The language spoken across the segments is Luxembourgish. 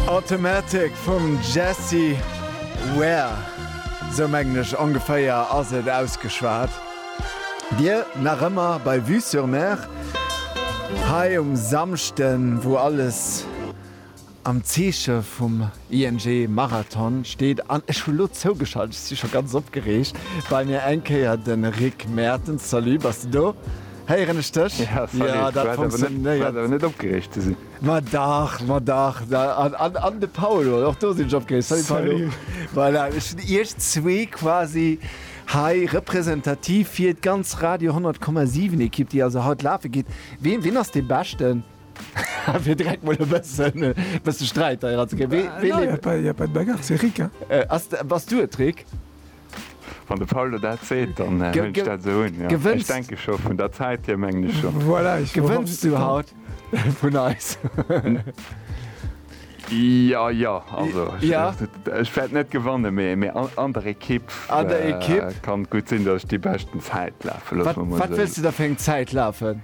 Automatic vum Jessie Ware, sou mengen ech ongeféier ass et ausgeschwat. Dir nach ëmmer bei Vue sur Mer hei um Samschden, wou alles am Zeeche vum ING Marathon steet an ech hu lo zougeschalt, ech si scho ganz opgereegt, bei mir eng Kéier de Rick Mertens. Salut, bass de do? Héieren ech dech? Jo, dat funktionéiert. Net opgereegt ze sinn. Ma dach, ma dach, da, an, an, an de Paul, oder och do sinn ech opgereegt. Salut, Paul. Salut. Voilà, ech hunn iech zwee quasi hei representativ fir d'ganz Radio 10,7 Ekipp, déi also haut lafe geet. Wien, wien ass dee Beschten? fir direkt mol e bëssen, bëssen Sträit hei eranzekréien. Wee, wee, Ah, non, y a pas, y a pas de bagarre, c'est Rick, hein. Äh, ass, bass du et, Rick? Wann de Paul der dat seet, dann hunn ech dat esou un, jo. Ech denke scho vun der Zäit hier, mengen ech scho. Gewënns du haut vun eis? Jo, jo, also ech wäert net gewannen, mee an der Ekipp kann et gutt sinn, datt ech déi beschten Zäit lafen. Wat wëlls du da fir eng Zäit lafen?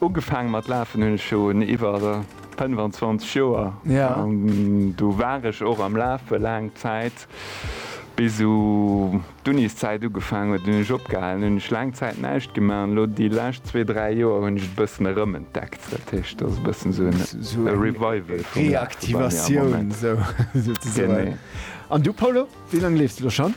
Ugefaang mat lafen hunn ech schon iwwer 25 Joer an do war ech och am lafe laang Zäit bis u d'Uniszäit ugefaang huet hunn ech opgehalen. Hunn ech laang Zäit näischt gemaach an elo déi lescht zwee, dräi Joer hunn ech et e bëssen erëmentdeckt. Dat heescht dat ass e bëssen esou en Revival vum Lafe bei mir am Moment. Reaktivatioun esou sozesoen. Genee. An du Paulo, wéi laang leefs de lo schonn?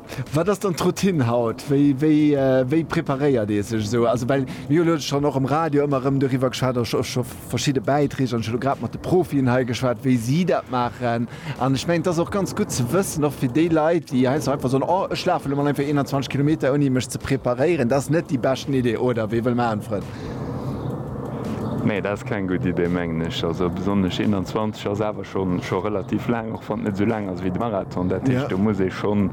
Wat ass dann d'Routine haut? Wéi preparéiert ee sech esou? Also well mir hunn elo schonn och am Radio ëmmer erëm doriwwer geschwat, och scho verschidde Bäitreeg, an ech hu elo grad mat de Profien hei geschwat, wéi si dat maachen. An ech mengen, et ass och ganz gutt ze wëssen, och fir déi Leit, déi heiansdo einfach soen, oh ech lafe lo mol einfach 21 Kilometer ouni mech ze preparéieren, dat ass net déi beschten Idee, oder? Wie wëll maachen, Frënn? Nee, dat ass keng gutt Idee, mengen ech. Also besonnesch 21 ass awer scho scho relativ laang, och wann et net esou laang ass wéi de Marathon. Dat heescht, do muss ee schonn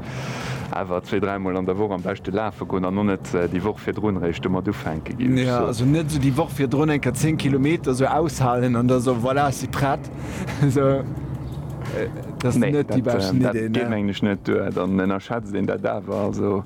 awer zwee, dräi Mol an der Woch am beschte lafe goen an och net déi Woch virdrun eréischt domat ufänke ginn. Jo, also net esou déi Woch virdrun eng Kéier zéng Kilometer esou aushalen an da soen, voilà, ech si prett. Esou, dat ass net déi beschten Idee, ne? Nee, dat geet, mengen ech, net duer. Dann ënnerschätzt een dat awer. Also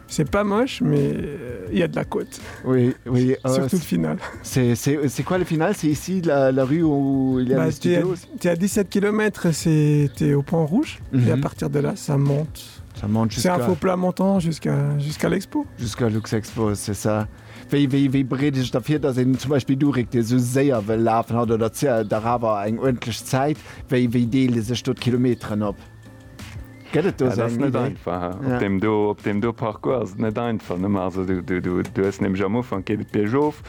C'est pas moche, mais il y a de la côte. Oui, oui. Surtout le final. C'est quoi le final? C'est ici la rue où il y a les studios? Tu es à 17 kilomètres, tu es au point rouge. Et à partir de là, ça monte. Ça monte jusqu'à. C'est un faux plat montant jusqu'à l'expo. Jusqu'à Luxexpo, c'est ça. Wie bereet ee sech da vir, datt een zum Beispill do réckt, dee sou séier wëll lafen hatt oder dach awer eng uerdentlech Zäit? Wéi deele sech do d'Kilometeren op? Gëtt et do sou eng Iddi? Op deem do, op deem do Parcours ass et net einfach. Nëmme also du, du, du, du hues nämlech am Ufank geet et biergof.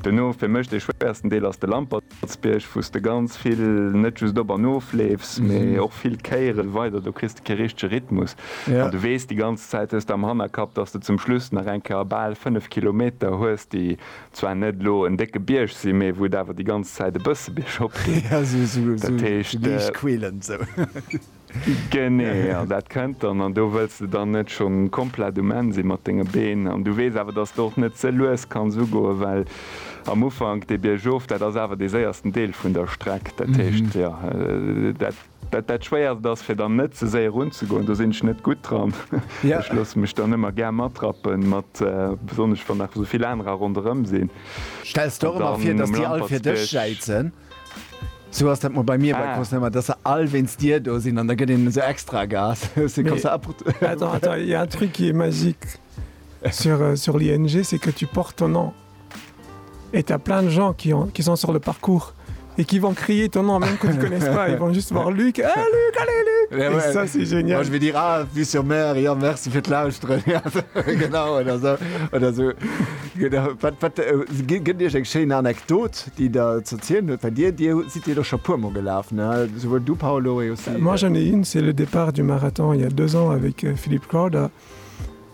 Duerno, fir mech dee schwéiersten Deel ass de Lampertsbierg, wou s de ganz vill net just op an of leefs, mee och vill Kéiere weider. Do kriss de kee richtege Rhythmus an du weess déi ganz Zäit, hues de am Hannerkapp, dass de zum Schluss nach eng Kéier bal fënnef Kilometer hues, déi zwar net elo en décke Bierg sinn, mee wou et awer déi ganz Zäit e bësse biergop geet. Jo, esou, esou, esou, Dat esou heescht. liicht quälend, esou. Genee, jo, dat kënnt dann. An do wëlls de dann net schonn komplett um Enn si mat denge Been. An du weess awer, dass de och net ze lues kanns ugoen, well am Ufank dee Biergof, dat ass awer dee séiersten Deel vun der Streck. Dat heescht, jo, dat. Dat dat schwéierst ass fir dann net ze séier erun ze goen, do sinn ech net gutt dran. Ech loosse mech dann ëmmer gär matrappen mat besonnesch wann nach esou vill anerer ronderëm sinn. Stells der och ëmmer vir dass déi all fir dech schäitzen? Sou ass dat mol bei mir bei Concerten, dass se all wéinst dir do sinn an da gëtt een esou extra Gas. Attends attends, il y a un truc qui est magique sur sur l'ING, c'est que tu portes ton nom. Et a plein de gens qui ont qui sont sur le parcours et qui vont crier ton nom même que tu connais pas ils vont juste voir Luc eh Luc allez Luc yeah, ouais. ça c'est génial Moi, je vais dire ah vu sur mer ja merci fir lausren genau oder so oder so genau wat wat äh, gëtt Dir eng schéin Anekdot déi der zerzielen huet bei Dir Dir si Dir doch scho puer mo gelaf ne souwuel du Paolo aussi, moi j'en ai une c'est le départ du marathon il y a deux ans avec euh, Philippe Crowder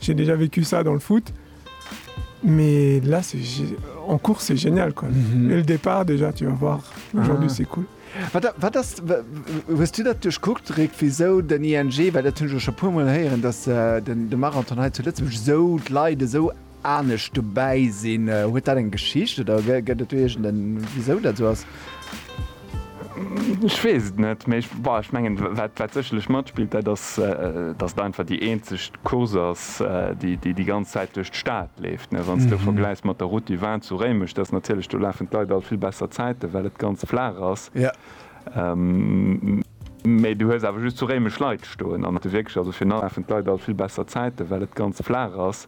J'ai déjà vécu ça dans le foot mais là c'est en course c'est génial quoi et le départ déjà tu vas voir aujourd'hui c'est cool. Wat ass, hues du dat duerchkuckt Rick, wisou den ING, well dat hunn ech elo scho puer mol héieren, datt de Marathon hei zu Lëtzebuerg esou, d'Leit esou anescht dobäi sinn? Huet dat eng Geschicht oder gëtt et do iergend en wisou dat esou ass? Ech weess et net, mee ech, bah, ech mengen, wat, wat sécherlech matspillt, dat ass, dass et einfach déi eenzeg Course ass, déi, déi déi ganz Zäit duerch d'Stad leeft, ne. Wann s de vergläichs mat der Route du Vin zu Réimech, dat ass natierlech, do lafen d'Leit all vill besser Zäiten, well et ganz flaach ass, mee du hues awer just zu Réimech Leit stoen an de Wierk, also fir nach, lafen d'Leit all vill besser Zäiten, well et ganz flaach ass.